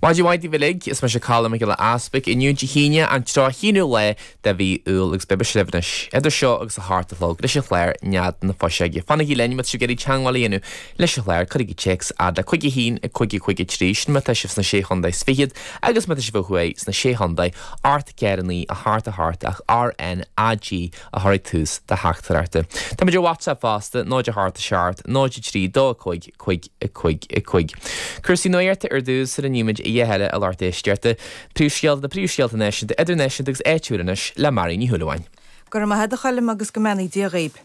Maidin mhaith daoibh uilig. Is mise Colm Mac Giolla Easbuic. Inniu Dé hAoine, an tríocha haonú lá de mhí Iúil agus beidh mise libh anois idir seo agus a hocht a chlog. Leis an chlár Nead na Fuiseoige. Fanaigí linn má tá sibh ag iarraidh teangmháil a dhéanamh leis an chlár. Cuirigí téacs fhad le cúig, a haon, a cúig, a cúig, a trí, sin má tá sibh sna Sé Chondae is Fichead agus má tá sibh ó thuaidh sna Sé Chondae, ocht 4 9 a hocht a hocht ach RnaG a chur ag tús do theachtaireachta. Táimid ar WhatsApp fosta, 0 a hocht 7 0 3 2 5 cúig a cúig a cúig. Cúrsaí nuachta ar dtús, sula nímid a dhath eile, ag tabhairt éisteacht do phríomhscéalta, na príomhscéalta náisiúnta, idirnáisiúnta agus áitiúla anois, le Marion Ní Shúilleabháin. Go raibh maith a't a Choilm agus go mbeannaí Dia dhaoib.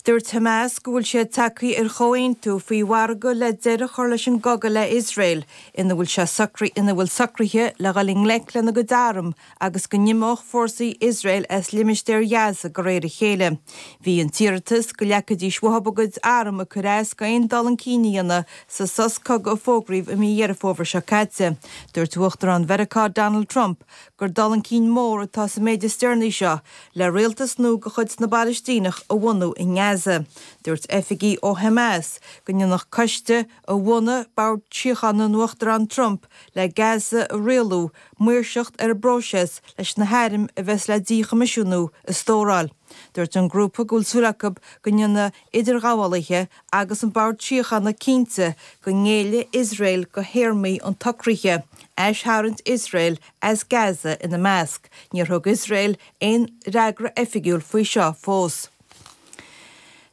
Dúirt Hamas go bhfuil siad tagthaí ar chomhaontú faoi mhargadh le deireadh a chur leis an gcogadh le Iosrael ina bhfuil sé sa ina bhfuil socruithe le dhul i ngleic lena gcuid arm agus go n-imeodh fórsaí Iosrael as limistéar Ghaza de réir a chéile. Bhí an t-iarratas go leagfaidís uathu a gcuid arm ag cur as d'aon dul chun cinn a dhéanamh sa sos cogaidh a fógraíodh i mí Dheireadh Fómhair seo caite. Dúirt Uachtarán Mheiriceá Donald Trump gur dul chun cinn mór atá sa méid is deireanaí seo le rialtas nua de chuid na bPalaistíneach a bhunú i nGaza. Dúirt oifigigh ó Hamas go ndéanfadh coiste a bhunaigh Bord Síochána an Uachtaráin Trump le Gaza a rialú, maoirseacht ar an bpróiseas leis na hairm a bheas le díchoimisiúnú a stóráil. Dúirt an grúpa go bhfuil súil acu go ndéanfaidh idirghabhálaithe agus an Bord Síochána cinnte go ngéillfidh Iosrael go théarmaí an tsocraithe, aistharraingt Iosrael as Gaza ina measc. Níor thug Iosrael aon fhreagra oifigiúil faoi seo fós.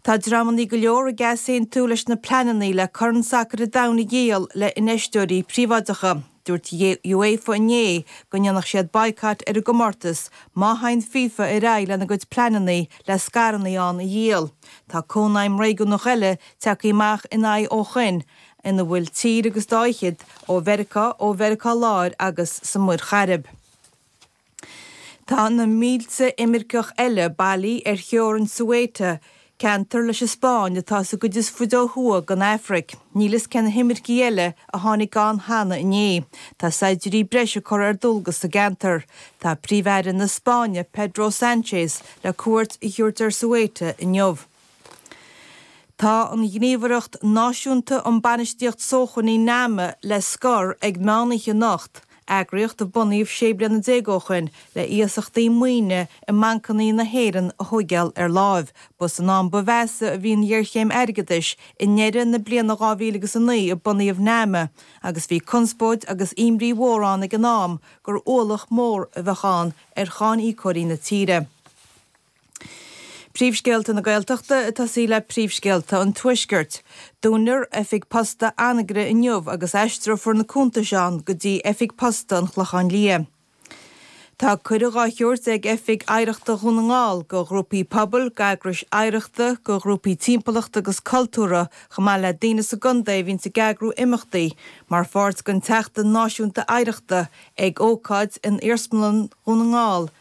Tá dreamannaí go leor ag easaontú leis na pleanannaí le Corn Sacair an Domhain a dhíol le infheisteoirí príobháideacha. Dúirt UEFA inné go ndéanfadh siad baghcat ar an gcomórtas má thagann FIFA ar aghaidh lena gcuid pleanannaí le scaireannaí ann a dhíol. Tá cónaidhm réigiúnach eile tagtha amach ina aghaidh ó shoin ina bhfuil tír agus dá fhichead ó Mheiriceá, ó Mheiriceá Láir agus sa Muir Chairib. Tá na mílte imirceach eile bailithe ar theorainn Ceuta, ceantar leis an Spáinn atá sa gcuid is faide ó thuaidh den Afraic. Níl fhios cé na himircigh eile a tháinig ann cheana inné. Tá saighdiúirí breise curtha ar dualgas sa gceantar. Tá Príomh-Aire na Spáinne, Pedro Sanchez, le cuairt a thabhairt ar Ceuta inniu. Tá an Ghníomhaireacht Náisiúnta um Bainistíocht Sócmhainní, Nama, le scor ag meán oíche anocht, eagraíocht a bunaíodh 16 bliana ó shin le hiasachtaí maoine i mbancannaí na hÉireann a thógáil ar láimh. Ba san am ba mheasa a bhí an ghéarchéim airgeadais, i ndeireadh na bliana 2000 agus a naoi a bunaíodh Nama, agus bhí conspóid agus imní mhór ann ag an am gur ualach mór a bheadh ann ar cháiníocóirí na tíre. Príomhscéalta na Gaeltachta ag tosaí le príomhscéalta an Tuaiscirt. Dúnfar oifig posta Anagaire inniu agus aistreofar na cuntais ann go dtí oifig posta an Chlocháin Liath. Tá cuireadh dhá thabhairt ag Oifig Oidhreachta Dhún na nGall go ghrúpaí pobail, go eagrais oidhreachta, go ghrúpaí timpeallachta agus cultúrtha chomh maith le daoine sa gcontae a bhíonns ag eagrú imeachtaí mar pháirt den tSeachtain Náisiúnta Oidhreachta ag ócáid in Iarsmalann Dhún na nGall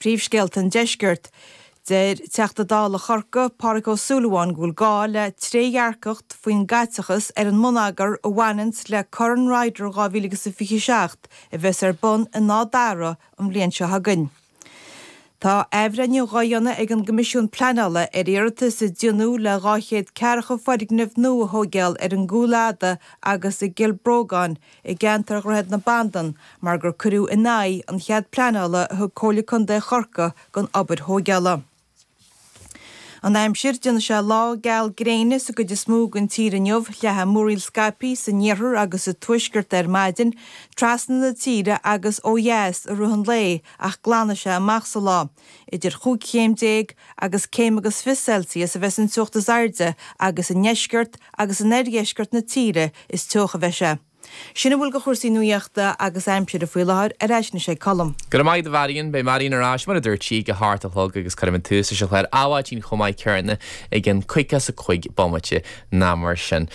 Príomhscéalta an Deiscirt. Deir Teachta Dála Chorcaí, Pádraig Ó Súilleabháin go bhfuil gá le trédhearcacht faoin gcaiteachas ar an mbonneagar a bhaineanns le Corn Ryder 2027 a bheas ar bun in Áth Dara an bhliain seo chugainn. Tá athbhreithniú dhá dhéanamh ag an gCoimisiún Pleanála ar iarratas a déanadh le 240 foirgneamh nua a thóigeáil ar an gCúil Fhada agus i gCill Brógáin i gceantar Dhroichead na Bandan mar gur cuireadh in aghaidh an chead pleanála a thug Comhairle Contae Chorcaí don obair thóigeála. An aimsir, déanfaidh sé lá geal gréine sa gcuid is mó den tír inniu, leathfaidh múraíl scaipthe san iarthar agus sa tuaisceart ar maidin, trasna na tíre agus ó dheas i rith an lae ach glanfaidh sé amach sa lá. idir chúig chéim déag agus céim agus fiche Celsius a bheas an teocht is airde agus i ndeisceart agus in oirdheisceart na tíre is teocha a bheidh sé. Sin a bhfuil de chúrsaí nuaíochta agus aimsire faoi láthair, ar ais anois ag Colm. Go raibh maith agat a Mharion. Beidh Marion ar ais, mar a dúirt sí, ag a hocht a chlog agus cuirfidh muid tús leis an chlár Adhmhaidin chomh maith céanna i gceann caoga is a cúig bomaite nó mar sin.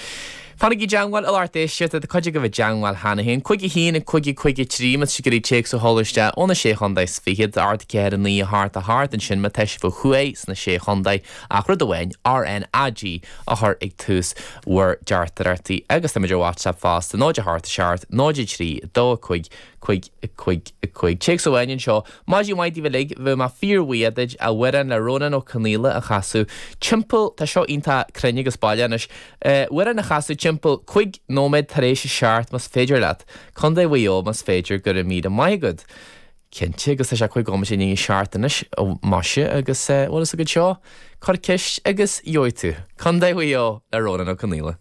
Fanaigí i dteangmháil a lucht éisteachta, tá cuid agaibh i dteangmháil cheana féin, cúig a haon, cúig a cúig a trí, más ag iarraidh téacs a sheoladh isteach ó na Sé Chontae is Fiche, ocht ceathair a naoi a hocht a hocht ansin má tá sibh ó thuaidh sna Sé Chontae ach rud amháin, RNAG a chur ag tús bhur dteachtaireachtaí agus táimid ar WhatsApp fosta, náid a hocht a seacht, náid a trí, dó a cúig, cúig a cúig a cúig. Téacs amháin anseo. Maidin mhaith daoibh uilig, bheadh mé fíor bhuíoch duit amhrán le Rónán Ó Conaola a chasadh timpeall, tá seo iontach cruinn agus baileach anois, amhrán a chasadh timpeall cúig nóiméad tar éis a seacht más féidir leat, Contae Mhaigh Eo más féidir go raibh míle maith agat. Cinnte agus tá sé cúig nóiméad i ndiaidh a seacht anois, maise agus bhfuil fhios agat seo, cuir ceist agus gheobhaidh tú. Contae Mhaigh Eo le Rónán Ó Conaola.